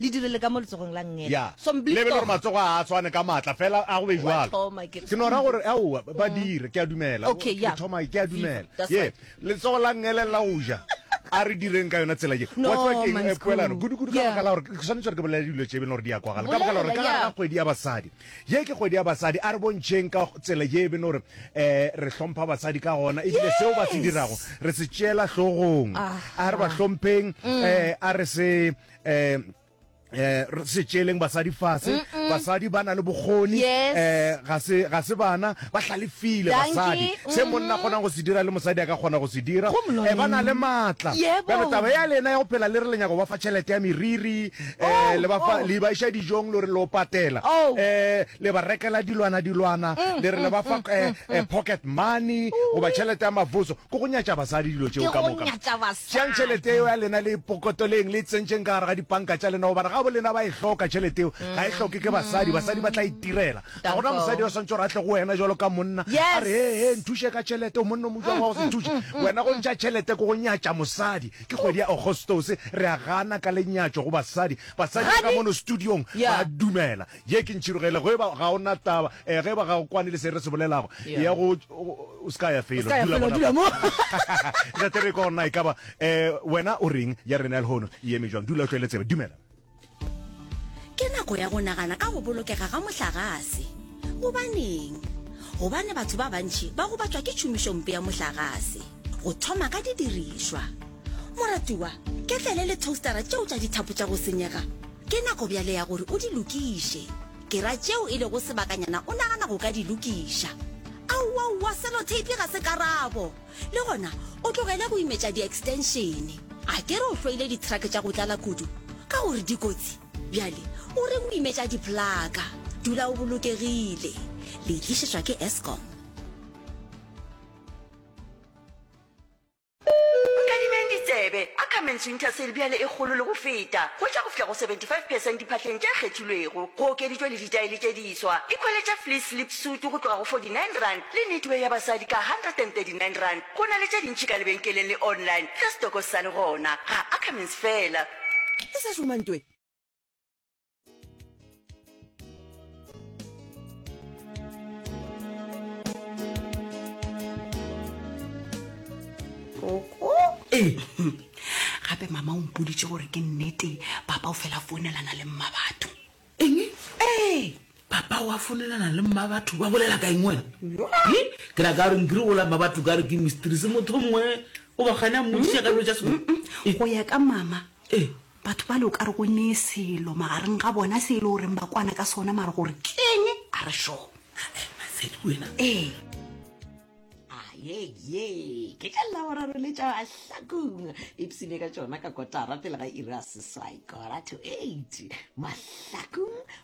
Le direle ka mo letsogong la Ngeta. Ya. Somblisto. Lebele gore matsogo a a swane ka maatla fela a go be Wa jalo. thoma ke re. Ke no ra gore, aowa, ba- ba dire, ke a dumela. Okay, Ke ya. thoma, ke a Viva, dumela. that's Ye. right. Letsogo la Ngele la go ja. A re direng ka yona tsela ye. No, Wa tseba ke eng, my eh, school. poelano, gudukudu ka Yeah. baka la gore ke swanetse gore ke bolele dilo tše e beng gore di a kwagala ka baka la gore ka Bolela, gare yeah. ga kgwedi ya basadi ye ke kgwedi ya basadi a re bontšheng ka tsela ye e beng gore um re hlompha basadi ka gona ebile seo ba se Yes. dirago re se tšeela hlogong Aha. a re ba hlompheng um a re se eh eh re se tšeleng basadi fase basadi ba na le bokgoni Yes. eh ga se ga se bana ba hlalefile Dankie. basadi se monna a kgonang go se dira le mosadi a ka kgona go se dira Go mloleng. eh ba na le maatla Yebo. bjale taba ya lena ya go phela le re le nyako ba fa tšhelete ya meriri Oh, eh le ba fa oh. le ba iša dijong le re lo patela Oh. Mm, eh le ba rekela dilwana dilwana le re le ba fa eh, eh, pocket money goba tšhelete ya mavuso Ke go nyatša basadi dilo tšeo ka moka. Tšeang tšhelete yeo ya lena le e pokotoleng, le e tsentšeng ka gare ga dipanka tša lena, gobane gabo lena ba e hloka tšhelete yeo. Ga e hloke ke basadi, basadi ba tla itirela. Ga gona mosadi yo a swantše gore a tle go wena jalo ka monna, a re, He, he, nthuše ka tšhelete. O monna o mojwang wa go se nthuše? Wena go ntšha tšhelete ke go nyatša mosadi. Ke kgwedi ya Ogostose, re a gana ka lenyatšo go basadi. Basadi ba ka mono studiong ba a dumela. Ye ke ntšhirogela, ge eba ga o na taba, eh, ge eba ga o kwane le se re se bolelago, eya go, o se ka ya felo, dula gona fa. Tla tere ko na, e ka ba, eh, wena o reng, ya rena ya lehono e eme bjang? Dula o tšwele tsebe. Dumela. Ke nako ya go nagana ka go bolokega ga mohlagase. Gobaneng? Gobane batho ba bantši ba gobatšwa ke tšhomišompe ya mohlagase, go thoma ka didirišwa. Moratiwa, ke tlele le toastera tšeo tša dithapo tša go senyega, Ke nako bjale ya gore o di lokiše. Ke ra tšeo e lego sebakanyana o nagana go ka di lokiša. Aowaowa, seloteipi ga se karabo. Le gona, o tlogele go imetša di-extenšene. A ke re o hloile dithrake tša go tlala kudu ka gore di kotsi? Bjale o reng o imetša diplaka? Dula o bolokegile. Le tlišetšwa ke Eskom. Nkadimeng ditsebe, Ackermans Winter Sale bjale e kgolo le go feta, hwetša go fihla go 75 percent diphahleng tše kgethilwego. Go okeditšwe le ditaele tše diswa. Ikhweletša fleece slip suit go tloga go 49 rand le knitwear ya basadi ka 139 rand. Go na le tše dintši ka lebenkeleng le online ge stoko se sa le gona. Ga Ackermans feela. Ke sa šoma ntwe. ee gape mama o mpoditse gore ke nnete papa o fela founelana le mma batho eng ee papa wa founelana le mma batho ba bolela ka eng wena ke ra ka reng kere ola mma batho ka re ke mistrise motho mongwe o bagane a mmodisa ka dilo tsa sego go ya ka mama ee Batho bale o ka re go nee selo magareng ga bona se e le goreng ba kwana ka sona mare gore keng a re sure. Matsedi wena. Ee. Ayeye, ke ka Laboraro le tša mahlakong. Ipsine ka tšona ka kotara pele ga iri ya seswai, quarter to eight. Mahlakong